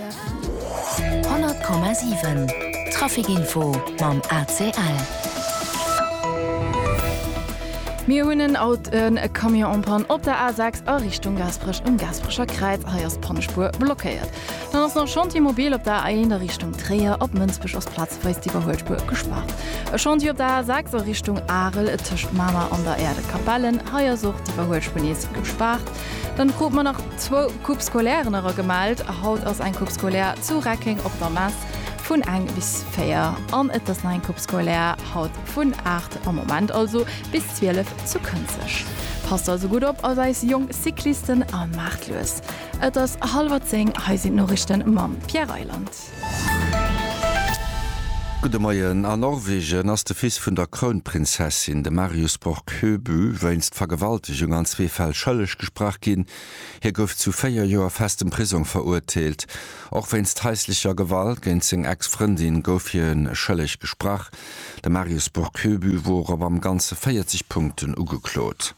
100,7 Trafic Info mam ACL. Mir hunn en Aut en Camion en panne op der A6 a Richtung Gaasperech um Gaasperecher Kräiz. Hei ass d'Pannespuer blockéiert. Dann ass nach Chantier mobil op der A1 a Richtung Tréier. Op Mënsbech ass plazeweis d'Iwwerhuelspuer gespaart. E Chantier op der A6 a Richtung Arel tëscht Mamer an der Äerdekapellen. Hei ass och d'Iwwerhuelspuer nees gespaart. Dann kucke mer nach. Zwou Coupes scolaires era gemellt. Haut ass eng Coupe scolaire zu Reckeng op der Mess vun eng bis véier an et ass nach eng Coupe scolaire haut vun aacht am Moment also bis zwielef zu Kënzeg. Passt also gutt op als eis jonk Cyclisten a maacht lues. Et ass hallwer zéng, hei sinn d'Norichten mam Pierre Reyland. Gudde Moien. A Norwegen ass de Fils vun der Krounprinzessin, de Marius Borg Høby, wéinst Vergewaltegung an zwee Fäll schëlleg gesprach ginn. Hie gouf zu véier Joer festem Prisong verurteelt. Och wéinst haislecher Gewalt géint seng Ex-Frëndin gouf hie schëlleg gesprach. De Marius Borg Høby wor op am Ganze 40 Punkten ugeklot.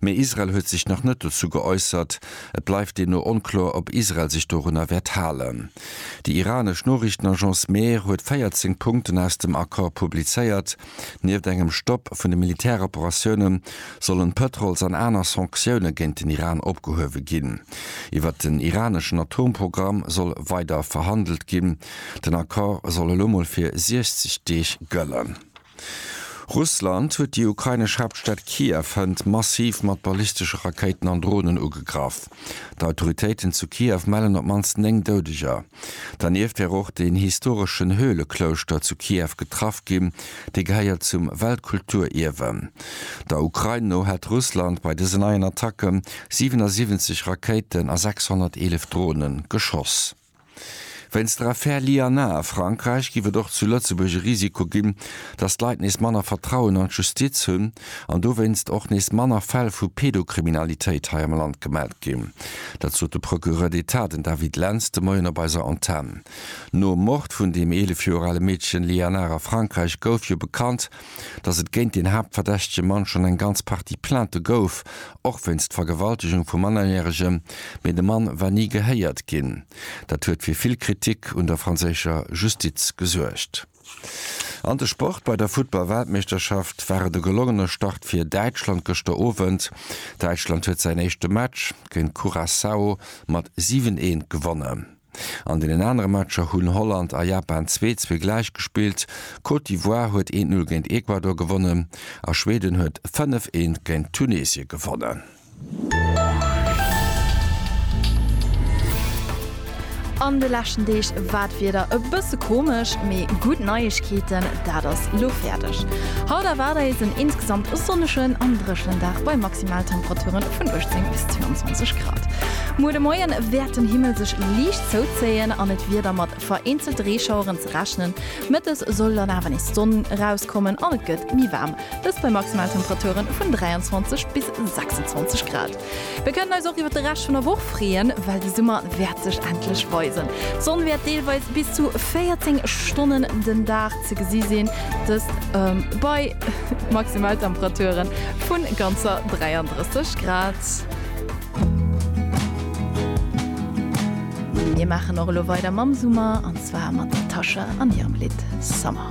Mee Israel huet sech nach net dozou geäussert. Et bleift deemno onkloer, ob Israel sech dorunner wäert halen. Déi iranesch Noriichtenagence Mehr huet 14 Punkten aus dem Accord publizéiert. Nieft engem Stopp vun de Militäroperatioune sollen d'Pëtrols an aner Sanktioune géint den Iran opgehuewe ginn. Iwwert den iraneschen Atomprogramm soll weider verhandelt ginn. Den Accord soll elo mol fir 60 Deeg gëllen. Russland huet déi ukrainesch Haaptstad Kiew hënt massiv mat ballistesche Rakéiten an Dronen ugegraff. D'Autoritéiten zu Kiew mellen op d'mannst 9 Doudeger. Dernieft wär och den historeschen Höhleklouschter zu Kiew getraff ginn, dee gehéiert zum Weltkulturierwe. Der Ukrain no hätt Russland bei dësen neien Attacke 77 Rakéiten a 611 Drone geschoss. Wéinst der Affär Lianna a Frankräich géif et och zu Lëtzebuerg e Risiko ginn, datt d'Leit nees manner Vertrauen an d'Justiz hunn an dowéinst och nees manner Fäll vu Pedokriminalitéit hei am Land gemellt ginn. Dat sot de Procureur d'Etat, den David Lentz, de Moien op eiser Antenn. Nom Mord vun deem 11 Joer ale Meedchen Lianna a Frankräich gouf jo bekannt, datt et géint deen haaptverdächtege Mann schonn eng ganz Partie Plainte gouf, och wéinst Vergewaltegung vu Mannerjäregem, mee de Mann war ni gehéiert ginn. Dat huet fir vill Kritik un der franséischer Justiz gesuergt. An de Sport, Bei der Futtball-Weltmeeschterschaft war et e gelongene Start fir Däitschland gëschter Owend. Däitschland huet säin éischte Match géint Curaçao mat 7, 1 gewonnen. An deenen anere Matcher hunn Holland a Japan zwee zwee gläich gespillt, Côte d'Ivoire huet eent Null géint Ecuador gewonnen a Schweden huet fënnef eent géint Tunesien gewonnen. An de leschten Deeg war d'Wieder e bësse komesch, mee gutt Neiegkeeten, dat ass lo fäerdeg. Haut erwaart eis en insgesamt sonnegen an dréchenen Dag bei Maximaltemperature vun 18 bis 22 Grad. Muer de Moien wäert den Himmel sech liicht zouzéien an et wier da mat vereenzelte Reeschaueren ze rechnen. Mëttes soll dann awer nees d'Sonn erauskommen an et gëtt méi waarm, dëst bei Maximaltemperature vun 23 bis 26 Grad. Mir kënnen eis och iwwert de Rescht vun der Woch freeën, well de Summer wäert sech endlech weisen. D'Sonn wäert deelweis bis zu 14 Stonnen den Dag ze gesi sinn, dëst bei Maximaltemperature vu ganzer 33 Grad. Mir maachen och elo weider mam Summer, an zwar mat der Tasha an hirem Lidd Summer.